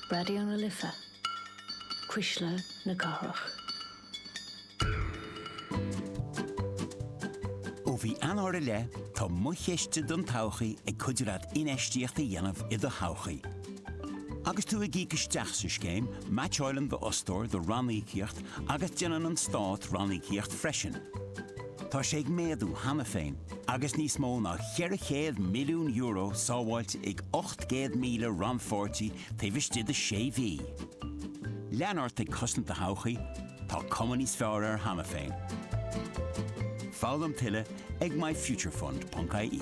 Raidió na Life, Cuisle na Cathrach. Ó mhí Eanáir i leith, tá Mo Chiste don Todhchaí ag cuidiú leat infheistíocht a dhéanamh i do thodhchaí. Agus tú ag íoc isteach sa scéim, meaitseáileann d'fhostóir do ranníocaíocht agus déanann an Stát ranníocaíocht freisin. Tá sé ag méadú cheana féin agus níos mó ná €400 milliún sábháilte ag 800,000 rannpháirtí taobh istigh de sé mhí. Lean ort ag cosaint do thodhchaí, tá cuma níos fearr air cheana féin. Foghlaim tuilleadh ag myfuturefund.ie.